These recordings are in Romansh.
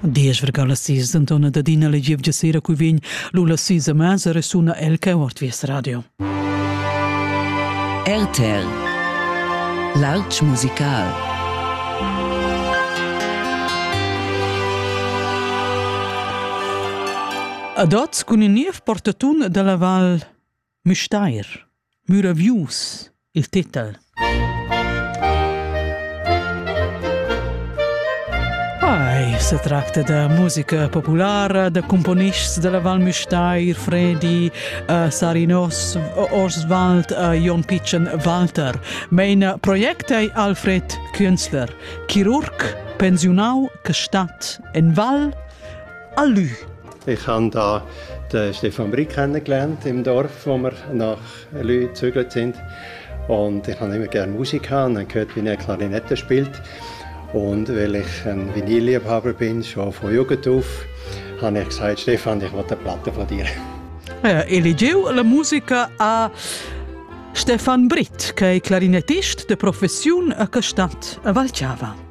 Diesch vergala sis Antona Dadina le gievgia sera cui vegn Lula sis a masa resuna el che ort vies radio. RTL L'Arch musical Ad oz cun in niev portatun dalla val Müstair, müravius, il titel. Ei se tracta da musica populara da componists della Val Müstair, Fredi, uh, Sarinos, Orswald uh, Jon Pichen Walter. Mein project è Alfred Künzler, chirurg pensiunau che stat en Val a Lü. Ich habe da den Stefan Brick kennengelernt im Dorf, wo wir nach Lü gezögert sind. Und ich habe immer gerne Musik gehabt und habe gehört, wie er Klarinette spielt. Und weil ich ein Vinilliebhaber bin, schon von Jugend auf, habe ich gesagt, Stefan, ich will eine Platte von dir. Ah ja, eligiu la musica a Stefan Britt, che è clarinettist de professiun a Castat a Valciava.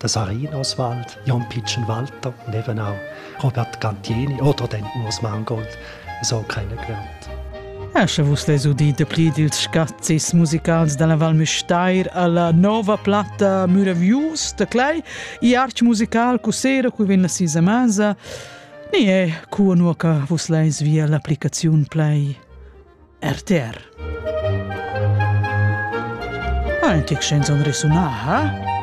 der Sarin Oswald, Jan Pitschen Walter und eben auch Robert Cantieni oder den Urs Mangold so kennengelernt. E sche vus les udit de pli dils scazzis musicals dalla Val Müstair alla nova platta Muravius de Clay, i arch musical cu sera cu vin la sisa masa, ni è cu nu che vus leis via l'applicazione Play RTR. Anche chanson resonà, ha? Eh?